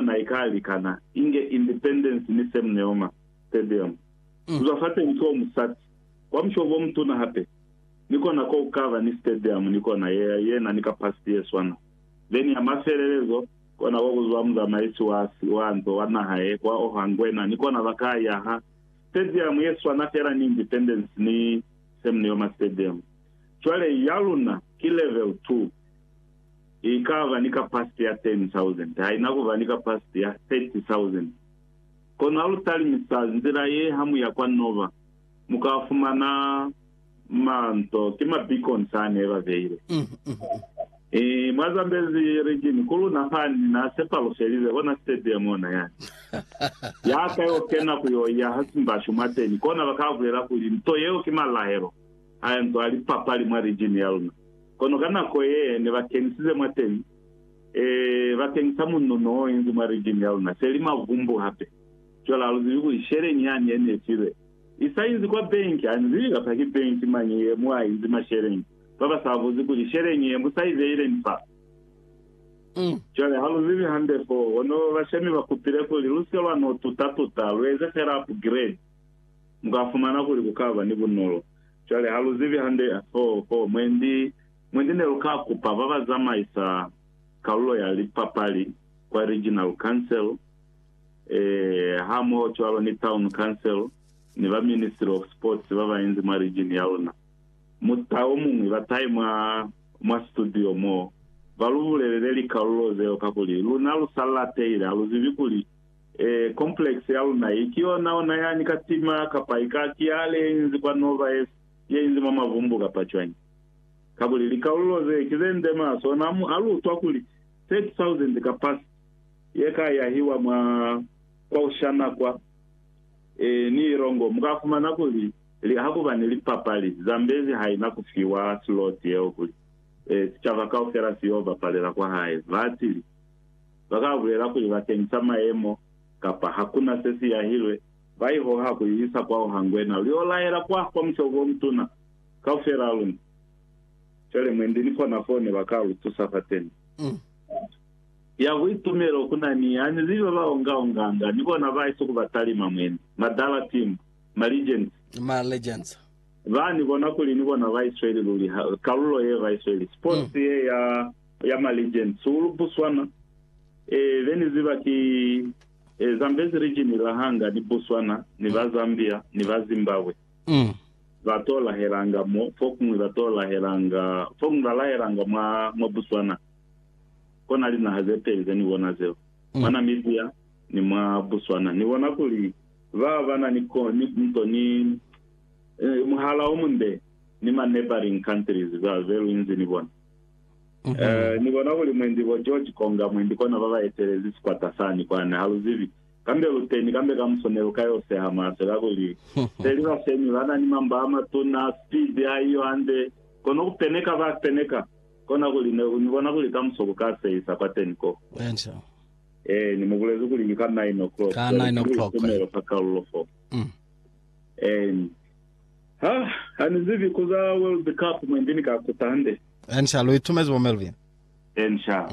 na ikaalikana inge Independence ni Sam Nujoma Stadium. Kuzwa fateñi foo musati wa mushobo omutuna hape ni kona ko kukaba ni stadium ni kona yea yena ni kapasiti yeswana. Veni ya mafelelezo, kona ko kuzwa muzamaisi wa si wa nto wa naha ye kwa oha ngwena ni kona bakaa yaha stadium yeswana fela ni Independence ni Sam Nujoma Stadium. Cwale yaluna ki level two. ikaba ni kapasiti ya 10,000, haina kuba ni kapasiti ya 30,000. Kono halutalimisa nzila ye hamuya kwa Nova, mukafumana manto, ki ma beacons ane babeile. I, mwa Zambezi region, ku luna fani, na sepalufelize kona stadium ona yani. Yaka yo kena ku yo iya ha Simbashu mwateni, kona bakabulela kuli nto yeo ki malahelo a nto a lipapali mwa region yaluna. Kono ka nako ye ne ba kenisize mwateni, ee, ba kenisa munno n'o inzi mwa rijimu ya luna, se li mavumbu hape. Cwale ha lu zibi kuli sheleñi yani ye ne filwe i sa inzi kwa benki, ha ni zibi kapa ki benki mañi ye mu a inzi masheleñi, ba ba sa buzi kuli sheleñi ye mu sa i beileñi fa. Cwale ha lu zibi hande fo, kono bashemi ba kupile kuli lu sike lwa n'o tuta-tuta, lu eze fela upgrade, mu ka fumana kuli ku ka ba ni bunolo. Cwale ha lu zibi hande, ho, ho, mwendi, mwendi ne lu ka kupa ba ba zamaisa kalulo ya lipapali kwa Regional Council, e, hamoho cwalo ni Town Council, ni ba Ministry of Sports ba bainzi mwa region ya luna. Muta o muñwi ba tai mwa, mwa studio mo, ba lu bulelele likalulo zeo, kakuli luna lu sa latelile, ha lu zibi kuli Ee, complex ya luna hii ki yona ona yani ka tima, kapa ika ki ya le inzi kwa nova ye, ye inzi mwa mavumbu kapa cwañi. Kakuli likalulo ze ki ze nde maso ona amu a lutwa kuli 30,000 capacity ye ka yahiwa mwa kwaushana kwa, ee, ni ilongo, mu ka fumana kuli li, ha kuba ni lipapali, Zambezi ha ina ku fiwa slot yeo kuli, ee, sicaba kaufela si yo bapalela kwa hae. Ba atili. ba ka bulela kuli bakeng sa mayemo kapa ha ku na se si yahilwe, ba i hoha ku i isa kwao ha Ngwena, lu y'o lahela kwa kwa musebo o mutuna kaufel'a ha luna. Cwale mwendi ni kona f'o ne ba ka lu tusa fateni. Ya buitumelo ku na ni yani li ba ba onga-onganga, ni bona ba isuku ba talima mwendi, madala timbo, ma legends. Ma legends. Ba ni bona kuli ni bona ba isweli luli ha, kalulo ye ba isweli, sports ye ya. ya Maligen Sulu Buswana e be ni ziba ki e Zambezi Region la hanga ni Buswana ni ba Zambia ni ba Zimbabwe Mm. ba to lahelanga mo fokuñwi ba to lahelanga fokuñwi ba lahelanga mwa mwa Buswana kona linaha ze peli ze ni bona zeo Mm. mwa Namibia ni mwa Buswana ni bona kuli ba ba na ni ko ni nto ni eh, muhala o munde ni ma neighboring countries ba ze lu inzi ni bona Eh, ni bona kuli mwendi bo George Conger, mwendi kona baba etelezi sikwata sani kwani, ha lu zibi. Kambe lu teni, kambe kamuso ne lu ka yo seha mahlo, kakuli peli ba semi ba na ni mamba a matuna, speed ha iyo hande, kono ku peneka ba peneka. Kona kuli ne, ni bona kuli kamuso ku ka sehisa kwateni ko. Enca. Eh, ni mu bulezi kuli ki ka nine o'clock. Ka nine o'clock. Tumelo fa kalulo fo. Mm. Eh, Ha, ha ni zibi ku za World Cup mwendi ni ka kuta hande. Encia, lu itumezi bo Melvin? Encia.